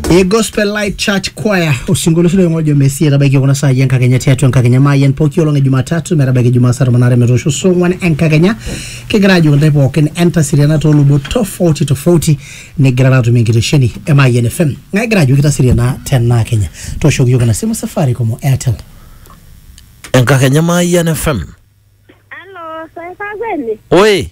e gospel light church choir osinkoliosi loing'ojo mesia etabaiki kuna saai enkakenya tiatua enkakenya maayian pooki olong e jumatatu metabaiki jumaa saa tomon aare metoosho saa ong'wan enkakenya kigira ajoki intae pookin entaseriana toolubot tofauti tofauti nigirara atum enkitesheni e maayian fm ng'ae egira ajoki taseriana tenaa kenya tooshoki yiok ina simu safaricom o airtel enkakenya maayian fm Aló, soy Fagwene. oe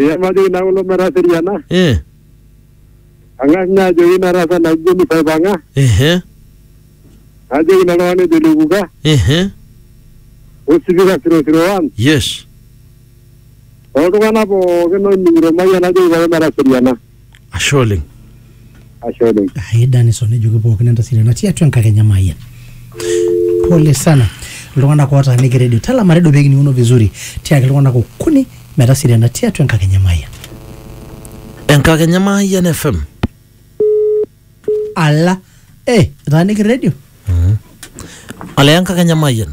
Iya majoki naa kulo metaseriana, eh, ang'as ninye ajoki ina rasa naji Jennifer aipang'a, ehe, najoki ilo tung'ani ojo Lekuka, ehe, osipika 001, yes, oltung'anak pookin oning'ito mayian najoki pookin metaseriana. ashe oleng ashe oleng ai danison ejoki pookin entasile natii atua enkakenya maayia pole sana iltung'anak ootaaniki redio talama redio pee kining'uno vizuri tiaki iltung'anak okuni metaseriana tiatua enkakenya maayia enkakenya maayian fm ala eh etaaniki redio ole enkakenya maayian